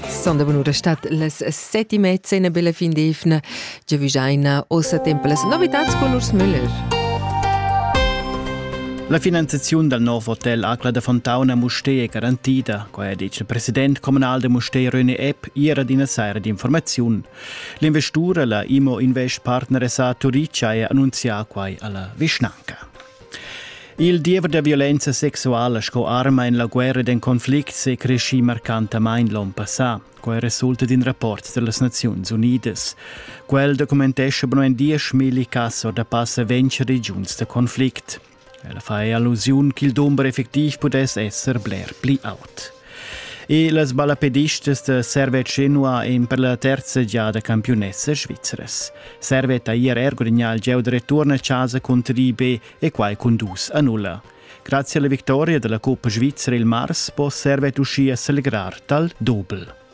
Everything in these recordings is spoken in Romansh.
Sondavanura stat las settima cena bella fin d'efna, giavigiaina ossa tempo las novitats con Urs Müller. La finanziaziun dal nov hotel Acla da Fontauna Mustér è garantida, quai ha detg il president communal da Mustér René Epp ieri d'ina saira d'informaziun. L'investura, la IMO Invest Partner SA Turica, è annunzià quai alla vischnanca. Il diever da violenza sexuala sco arma en la guerra d'in conflict è creschì marcantamain l'onn passà. Quai resulta d'in rapport da las Naziuns Unidas. Quel documentescha bu en dieschmilli cass da passa ventg regiuns da conflict. Ella fa allusiun ch'il dumber effectiv pudess esser bler pli aut. E las ballapedistas da Servet Genua ein per la terza giada campiunessas svizras. Servet ha ier er gudagnà il gieu da return a casa contro l'IB e quai cun dus a nulla. Grazie alla vittoria della Coppa Svizzera il mars può Servet uschia celebrar tal doble.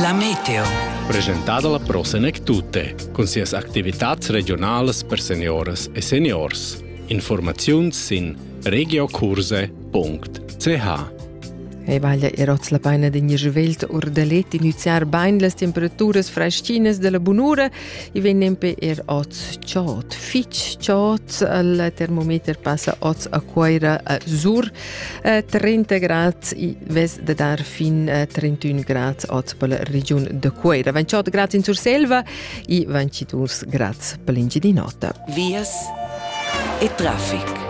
La meteo. Presentada la Pro Senec Tutte, cun sias activitats regionalas per senioras e seniors. Informaziuns sin regiokurse.ch Ei vaglia er oz la paina d'in juvelt urdalet iniziar bain las temperaturas freschinas della bunura e vegn nempe er oz chot. Fitch chot, il termometer passa oz a Cuaira a Sur äh, 30 grad i vess de dar fin äh, 31 grad ot per la regiun de Cueira. 28 grad in Surselva i 22 grad per l'Ingidinota. Vias e traffic.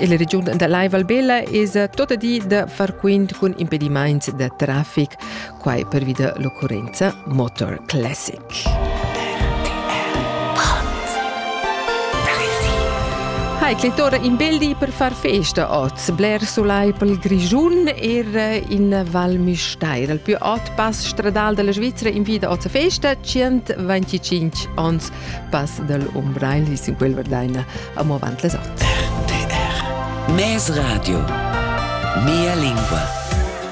Il region da Lai Valbella es tota di da far quint cun impedimaints da traffic quai pervi da l'occurrenza Motor Classic. Hai clitore in beldi per far festa oz, bler sulai pel Grischun er in Val Misteir. Il più ot pass stradal della Svizzera in vita oz a festa, 125 ons pass del Umbrein, li sin quel verdaina amo avant les ot. RTR Mes Radio Mia lingua